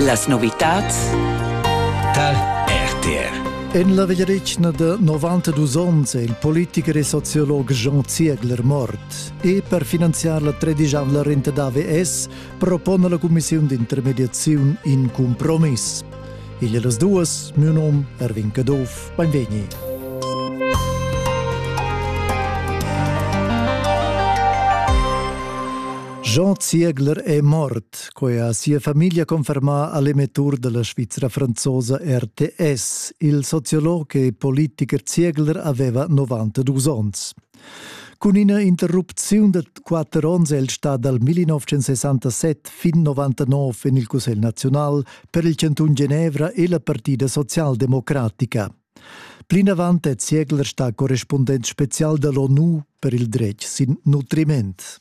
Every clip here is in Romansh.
Las novitads tar RTR. En la vegliadetgna da 92 onns è il politicher e sociolog Jean Ziegler mort. E per finanziar la tredigiavla renta da AVS propona la Commissiun d'intermediaziun in cumpromiss. Igl las duas, miu nom Erwin Caduff, benvegni. Jean Ziegler è mort, quai ha sia famiglia confermà all'emettur della Svizzera franzosa RTS, il sociolog e politiker Ziegler aveva 92 onns. Cun ina interrupziun da quatter onns è el stà dal 1967 fin 99 en il Cussegl naziunal per il chantun Genevra e la Partida socialdemocratica. Plinavant è Ziegler stà correspundent spezial da l'ONU per il dretg sin nutriment.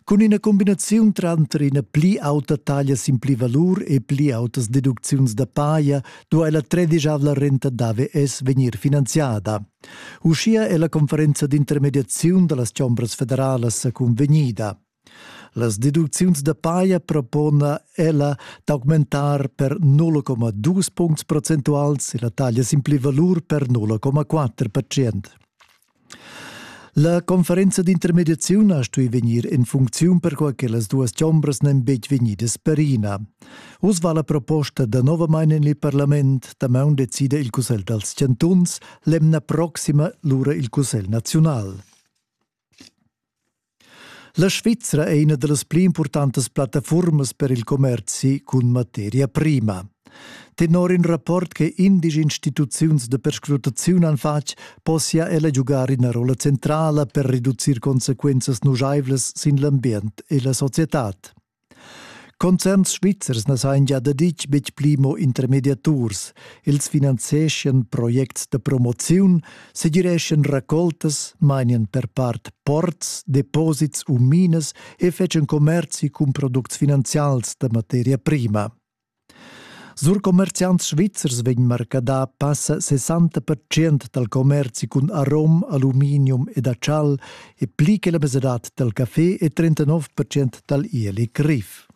Cun ina cumbinaziun tranter ina pli auta taglia sin pli valur e pli autas deducziuns da paja duai la tredisavla renta d'AVS vegnir finanziada. Uschia è la conferenza d'intermediaziun da las chombras federalas cunvegnida. Las deducziuns da paja propona ella d'augmentar per 0,2 puncts procentuals e la taglia sin pli valur per 0,4 percent. La conferenza d'intermediaziun ha stui vegnir en funcziun perquai che las duas chombras n'en betg vegnidas perina. Uss va la proposta da novamain en il parlament, damaun decida il Cussegl dals chantuns, l'emna proxima lura il Cussegl naziunal. La Svizra è ina da las pli impurtantas plattafurmas per il commerzi cun materia prima. Tenor in rapport che indici instituziuns de perscrutaziun han fatg, possia ella giugar ina rolla centrala per reducir consequenzas nujaivlas sin l'ambient e la societad. Concerns svizzers na sajan gia daditg betg pli mo intermediaturs. Els finanzieschan projects da promoziun, segireschan racoltas, mainian per part ports, deposits u minas e fetschan commerzi cun products finanzials da materia prima. Sur commerziants svizzers vegn marcadà passa 60 dal commerzi cun arom, aluminium ed achal e pli che la mesadad dal café e 39 dal ieli griv.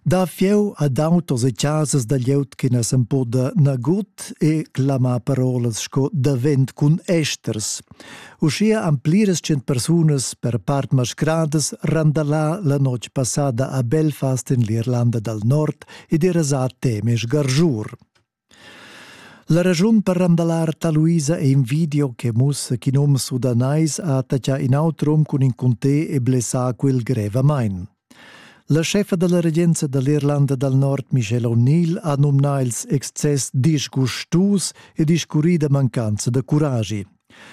Da fieu ad autos e casas da glieud che na s'empoda nagut e clamà parolas sco davent cun esters. Uschia han pliras tschient persunas per part mascradas randalà la notg passada a Belfast en l'Irlanda dal Nord ed era sa temes gargiur. La raschun per randalar Taluisa è in video che mussa ch'in um sudanais ha attaccà in auter um cun in cunté e blessà quel grevamain. La chefa dalla regenza dall'Irlanda dal Nord Michelle O'Neill ha numnà ils excess disgustus e discurrida mancanza da curagi.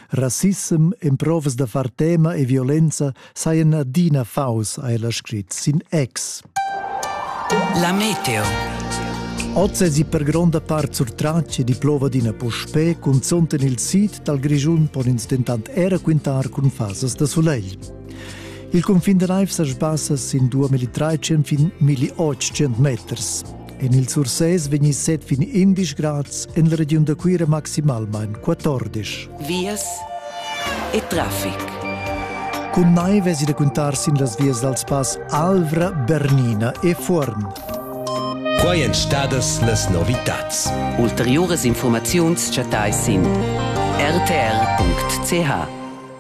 Rassissem, emprovas da far tema e violenza sajan adina faus, ha ella scrit sin ex. La meteo. Oz è per gronda part sur tracce di plovadina puspè, cunzont en il sid dal Grischun pon ins dentant era quintar cun fasas da sulegl. Il cunfin da naiv sa sbassa sin 2300 fin 1800 meters. En il Sursés vegni set fin 11 grads, en la regiun da Cuira maximalmain 14. Vias e traffic. Cun naiv èsi da cuntar sin las vias dals pass Alvra, Bernina e Fuorn. Quai èn stadas las novitads. Ulteriuras informaziuns chattais sin rtr.ch.